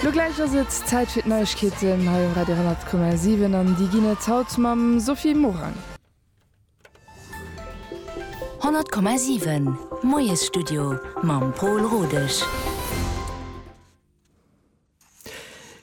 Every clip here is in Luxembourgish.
Lo gläich ass et Zäit fir d'Neiegkeeten hei um Radio 100,7 an déi ginn et haut mam Sophie Morang. 100,7 Moiesstudio mam Paul Rodesch.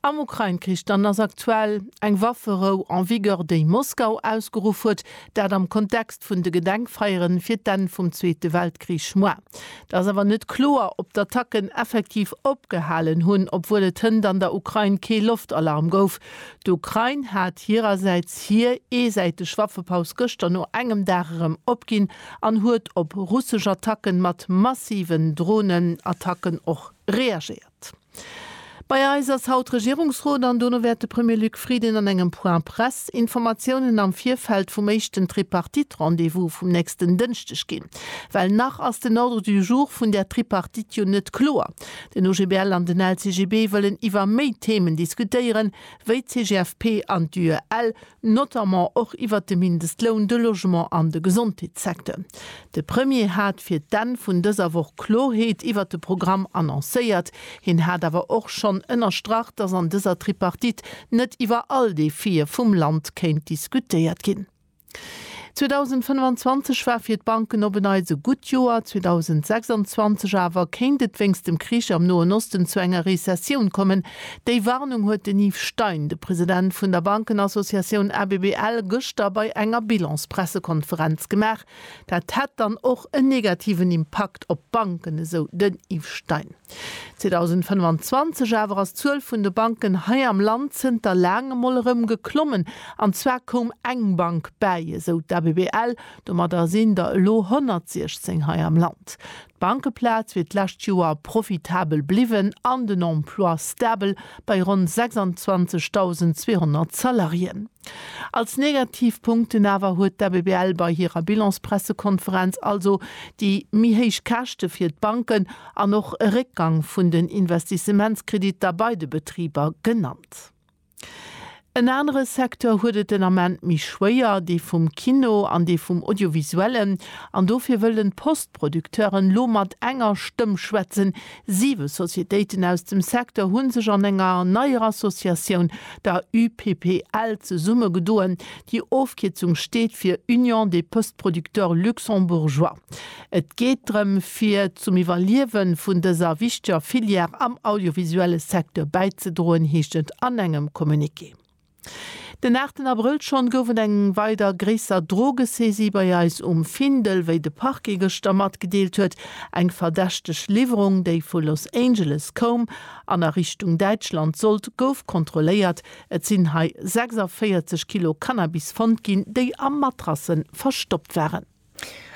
Am Ukrain-Krich dann ass aktuell eng Wafferou en vigueur, déi Moskau ausgeruff huet, dat am Kontext vun de Gedenkfeieren fir d'Enn vum Zweete Weltkrich. Moi, et ass awer net kloer, ob d'Attacken effektiv opgehalen hunn, obwuel et hënt an der Ukrain kee Loftalarm gouf. D'Ukrain hat hirersäits hir eesäiteg Waffepaus gëschter no engem Dag erëm opginn an huet op russesch Attacke mat massiven Dronenattacken och reagéiert. Bei eis ass haut Regierungsrot an dono wäert de Premier Luc Frieden an engem Point Presse Informatiounen am Virfeld vum éischten Tripartite-Rendez-vous vum nächsten Dënschdeg ginn. Well nach ass den Ordre du jour vun där Tripartite jo net kloer. Den OGBL an den LCGB wëllen iwwer méi Themen diskutéieren, wéi d'CGFP an d'UEL, notamment och iwwert de Mindestloun, de Logement an de Gesondheetssecteur. De Premier hat fir d'Enn vun dëser Woch Klorheet iwwert de Programm annoncéiert. Hien hat awer och schonn ënnerstrach, datt an dëser Tripartite net iwwer all Defie vum Land kéint diskutéiert ginn. 2025 war fir d'Banken op en Neits e gutt Joer, 2026 awer kéint et wéinst dem Krich am Noen Osten zu enger Rezessioun kommen, Déi Warnung huet den Yves Stein, de President vun der Bankenassociatioun ABBL, gëschter bei enger Bilans-Pressekonferenz gemaach. Dat hätt dann och en negativen Impakt op d'Banken, esou den Yves Stein. 2025 awer ass d'Zuel vun de Banken hei am Land zënter laangem mol erëm geklommen. An zwar koum eng Bank bäi, esou d'ABBL. Domadder sinn der elo 116 hei am Land. D'Bankeplaz wier d'lescht Joer profitabel bliwwen an den Emploi stabel bei ronn 26.200 Salariéen. Als negativ Punkten awer huet d'ABBL bei hirer Bilanspressekonferenz also déi méi héich Käschte fir d'Banken an och e Réckgang vun den Investissementskrediter bei de Betriber genannt. En anere Secteur huet et den Ament méi schwéier, dee vum Kino an dee vum Audiovisuellen. An dofir wëllen d'Post-Producteuren elo mat enger Stëmm schwätzen. Siwe Societéiten aus dem Secteur hu sech an enger neier Associatioun, der UPPL, zesumme gedoen. Déi Ofkierzung steet fir Union des Post-Producteurs Luxembourgeois. Et geet drëm, fir zum Iwwerliewen vun dëser wichteger Filière am audiovisuelle Secteur bäizedroen, heescht et an engem Communiqué. Den aachten Abrëll schonn gouf et eng weider gréisser Drogesaisie bei eis um Findel, wéi de Parquet gëschter matgedeelt huet. Eng verdächteg Liwwerung, déi vu Los Angeles koum an a Richtung Däitschland sollt, gouf kontrolléiert. Et sinn hei 46 Kilo Cannabis fonnt ginn, déi a Matrasse verstoppt waren.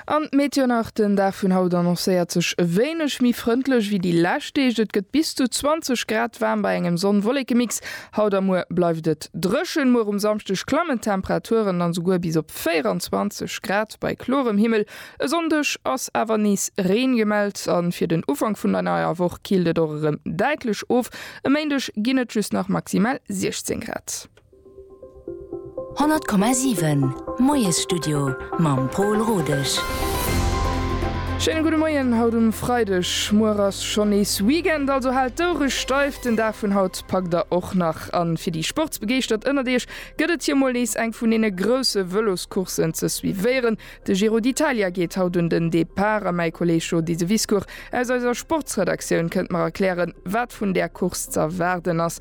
An d'Meteo nach den Dag vun haut annoncéiert sech e wéineg méi frëndlech wéi déi lescht Deeg. Et gëtt bis zu 20 Grad waarm bei engem Sonn-Wollekemix. Haut a muer bleift et dréchen. Muer um Samschdeg klammen d'Temperaturen dann esouguer bis op 24 Grad bei klorem Himmel. E Sonndeg ass awer nees Reen gemellt a fir den Ufank vun der neier Woch killt et och erëm däitlech of. E Méindeg ginn et just nach maximal 16 Grad. 100,7 Moiesstudio mam Pol Rodesch. Schéine gudde Moien haut um Freideg. Muer ass schonn nees Weekend, also haalt d'Oure steif. Den Dag vun haut packt der och nach. A fir déi Sportsbegeeschtert ënnert Iech gëtt et hir mol nees eng vun deene grousse Vëloscourssen ze suivéieren. De Giro d'Italia geet haut un den Depart a mäi Kolleeg Jo Diseviscourt aus eiser Sportsredaktioun kënnt mer erklären, wat vun där Course z'erwaarden ass.